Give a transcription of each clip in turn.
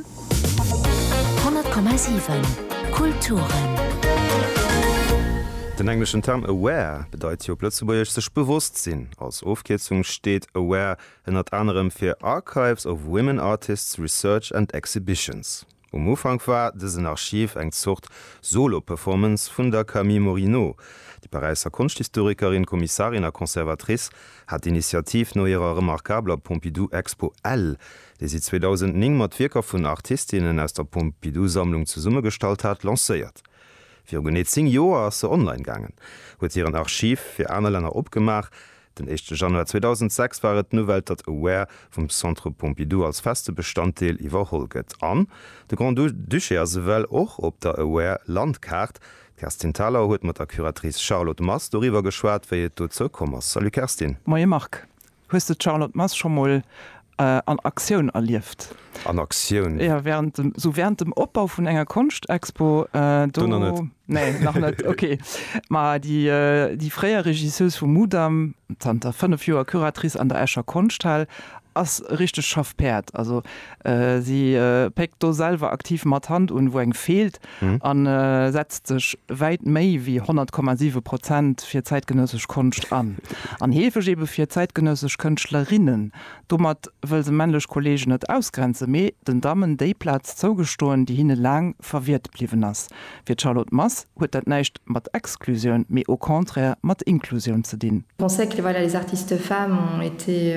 10,7 Kulturen. Den engleschen Term aware bedeit hei op Lëtzebuergesch sech bewosst sinn. Als Ofkierzung steet aware ënnert anerem fir Archives of Women Artists, Research and Exhibitions. Um Ufank war dësen Archiv eng Zort Solo-Performance vun der Camille Morineau. Déi Paräisser Konschthistorikerin, Kommissarin a Conservatrice hat d'Initiativ no hirer remarkabler Pompidou-Expo L dee si 2009 mat Wierker vun Artistinnen aus der Pompidou-Sammlung zesummegestallt hat, lancéiert. Viru genee zéng Joer ass se online gaangen, huet hiren Archiv fir aner Länner opgemaach. Den éischte Januar 2006 war et d'Nouvelle, datt Aware vum Centre Pompidou als feste Bestanddeel iwwerholl gëtt an de Grand-Duché ass ewell och op der Aware Landkaart. D'Kerstin Thalau huet mat der Curatrice Charlotte Mast doriwwer geschwat, wéi et dozou komm ass. Salut Kerstin. Moie Marc. Hues de d'Charlotte Mass scho mol an Aktioun erlieft? An Aktioun? Jo, während dem, sou während dem Opbau vun enger Konschtexpo. Do nach net. Nee, nach net, okay. Ma déi, déi fréier Regisseuse vum Mudam, zanter 5 Joer Curatrice an der Escher Konschthal, ass e richtegt Schaffpäerd. Also si péckt do selwer aktiv mat Hand un, wou eng feelt. a setzt sech wäit méi wéi 100,7 Prozent fir zäitgenëssesch Konscht an. An heefeg ebe fir zäitgenëssesch Kënschtlerinnen. Domat wëll se männlech Kolleegen net ausgrenzen, mee den Dammen déi Plaz zougestoen, déi hinne laang verwiert bliwwen ass. Fir d'Charlotte Mass huet dat näischt mat Exklusioun, mee au contraire mat Inklusioun ze dinn. Pensait que voilà les artistes femmes ont été.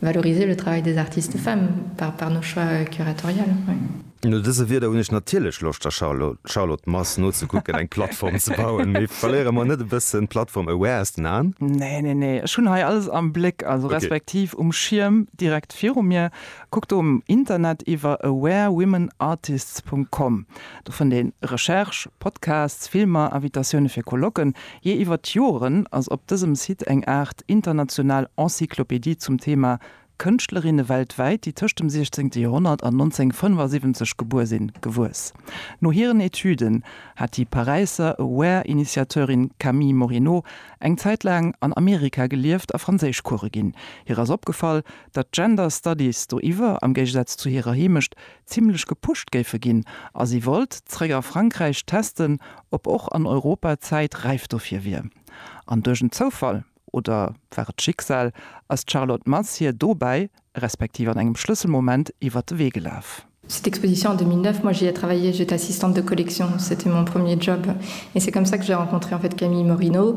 Valoriser le travail des artistes femmes par par nos choix curatoriales. No dëse Wierder hunn ech natierlech Loscht der Charlotte Mass nozekucken eng Plattform ze bauen. Mee verléiere mer net e bëssen d'Plattform Aware aus den Aen? Nee, nee, nee, ech hunn hei alles am Bléck, also respektiv um Schierm direkt viru mir. Kuck do um Internet iwwer awarewomenartists. Com. Do fënnt ee Recherche, Podcasts, Filmer, Invitatioune fir Colloquen, Jee iwwer d'Joren ass op dësem Site eng Aart international Encyclopédie zum Thema Kënschtlerinne weltwäit, déi tëscht dem 16. Joerhonnert an 1975 gebuer sinn, gewuess. No hiren Etüden hat déi Paräisser Aware-Initiateurin Camille Morineau eng Zäit laang an Amerika gelieft a Franséischcoure ginn. Hir ass opgefall, datt Gender Studies do iwwer, am Géigesaz zu hirer Heemecht, zimlech gepusht géife ginn a si wollt zréck a Frankräich testen, ob och an Europa d'Zäit räif dofir wier. An duerch en Zoufall, oder war et d'Schicksal, ass d'Charlotte Mass hir dobäi, respektiv an engem Schlësselmoment, iwwer de Wee gelaf. Cette exposition en 2009, moi j'y ai travaillé, j'étais assistante de collection, c'était mon premier job et c'est comme ça que j'ai rencontré en fait Camille Morino.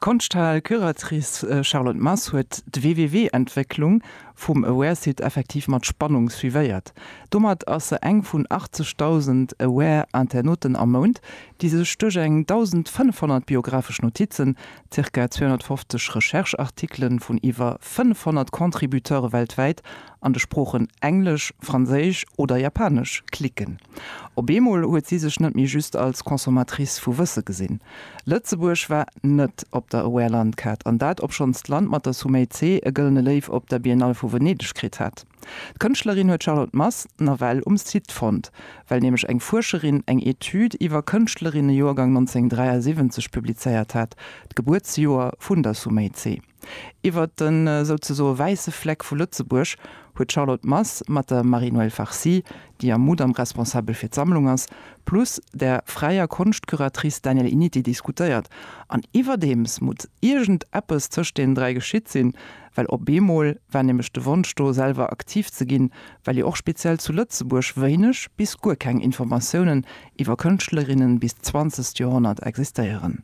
D'Konschthal-Curatrice Charlotte Mass huet d'WWW-Entwécklung vum Aware-Site effektiv mat Spannung suivéiert. Domat ass se eng vun 80.000 Aware-Internauten am Mount, déi sech duerch eng 1.500 biographesch Notizen, ca. 250 Recherche-Artikele vun iwwer 500 Contributeure weltwäit an de Sproochen Englesch, Franséisch oder Japanesch klicken. Op eemol huet si sech net méi just als Consommatrice vu Wësse gesinn. Lëtzebuerg war net op der Aware-Landkaart, an dat obschonns d'Land mat der Sumei Tse e Gëllene Léiw op der Biennale vu Venedeg kritt hat. D'Kënschtlerin huet d'Charlotte Mass nawell um Site fonnt, well nämlech eng Fuerscherin eng Etüd iwwer Kënschtlerinne Joergang 1973 publizéiert hat, d'Gebuertsjoer vun der Sumei Tse. Iwwert de souzesoe wäisse Fleck vu Lëtzebuerg huet d'Charlotte Mass mat der Marie-Noëlle Farcy, déi am Mudam responsabel fir d'Sammlung ass, plus der fräier Konschtcuratrice Danièle Initi diskutéiert. An iwwerdeems mut iergend eppes tëscht deenen dräi geschitt sinn, well op eemol war nämlech de Wonsch do, selwer aktiv ze ginn, well jo och speziell zu Lëtzebuerg wéineg bis guer keng Informatiounen iwwer Kënschtlerinnen bis d'zwanzegt Joerhonnert existéieren.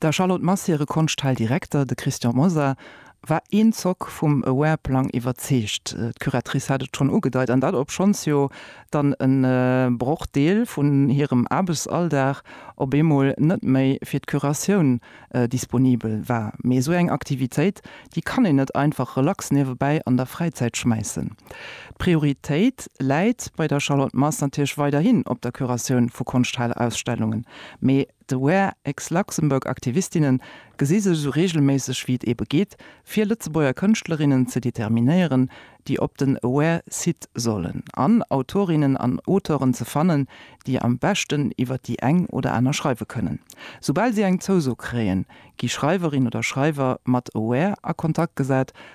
Der Charlotte Mass hire Konschthail Direkter, de Christian Mosar, war een Zock vum Aware-Plang iwwerzeegt. D'Curatrice hat et schonn ugedeit, an dat obschonns jo dann e Brochdeel vun hirem Aarbechtsalldag op eemol net méi fir d'Curatioun disponibel war. Mee esou eng Aktivitéit, déi kann een net einfach relax niewebäi an der Fräizäit schmäissen. D'Prioritéit läit bei der Charlotte Mass natierlech weiderhin op der Curatioun vu Konschthailausstellungen, mee D'Aware Aix-Luxembourg-Aktivistinne gesi sech esou reegelméisseg wéi et eebe geet, fir Lëtzebuerger Kënschtlerinnen ze determinéieren, déi op den Aware-Site sollen, an Autorinnen an Auteuren ze fannen, déi am beschten iwwer déi eng oder aner schreiwe kënnen. Soubal si eng Zouso kréien, gi Schreiwerin oder Schreiwer mat Aware a Kontakt gesat,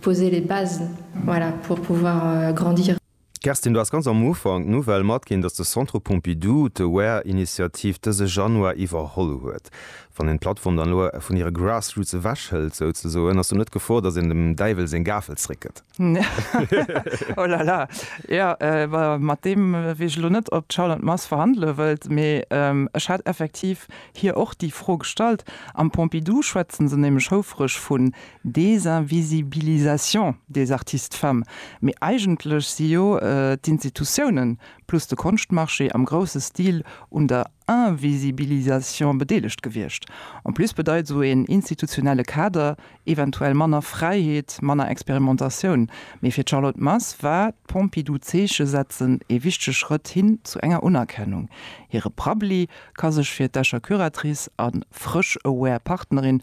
Poser les bases, voilà, pour pouvoir grandir. Kerstin, du has ganz am Ufank d'Nouvelle matginn, dass de Centre Pompidou d'AWARE-Initiativ dëse Januar iwwerholl huet. Wann een d'Plattform dann elo vun hire Grassroots ewechhëlt, souzesoen, ass do net d'Gefor, dass een dem Däiwel seng Gafel zréckgëtt? Oh la la, jo, mat deem wéi ech elo net op d'Charlotte Mars verhandele wëllt, mee ech hat effektiv hir och déi Fro gestallt. Am Pompidou schwätze se nämlech houfreg vun Désinvisibilisation des artistes femmes, mee eigentlech si jo d'Institutiounen plus de Konschtmarché am grousse Stil un der Invisibilisation bedeelegt gewiescht. En plus bedeit esou een institutionelle Kader eventuell manner Fräiheet, manner Experimentatioun, mee fir d'Charlotte Mars war d'Pompidou-Zeeche setzen ee wichtege Schrëtt hin zu enger Unerkennung. Hire Prabbeli ka sech fir d'Escher Curatrice a frësch aware Partnerin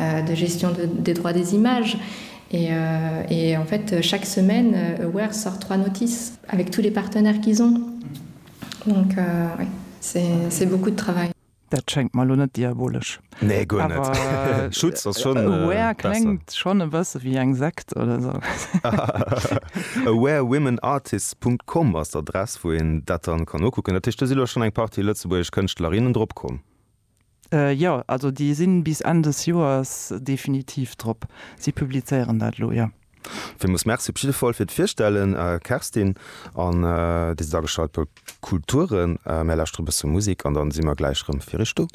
de gestion des droits des images et en fait chaque semaine Aware sort trois notices avec tous les partenaires qu'ils ont donc oui c'est beaucoup de travail. Dat schéngt mer elo net diabolesch. Nee, guer net. Schutz ass schonn besser. Aware kléngt schonn e bësse wéi eng Sekt oder esou. Awarewomenartists Punkt com ass d'Adress, wou een dat dann kann nokucken. Dat heescht, do si lo schonn eng Partie lëtzebuergesch Kënschtlerinnen drop komm. Jo, also déi sinn bis Enn des Joers definitiv drop. Si publizéieren dat elo, jo. Villmools Merci op jidde Fall fir d'Virstellen, Kerstin. An Dir sidd ageschalt bei Kulturen. Mir lauschteren e bësse Musek an da si mer gläich rëm fir Iech do.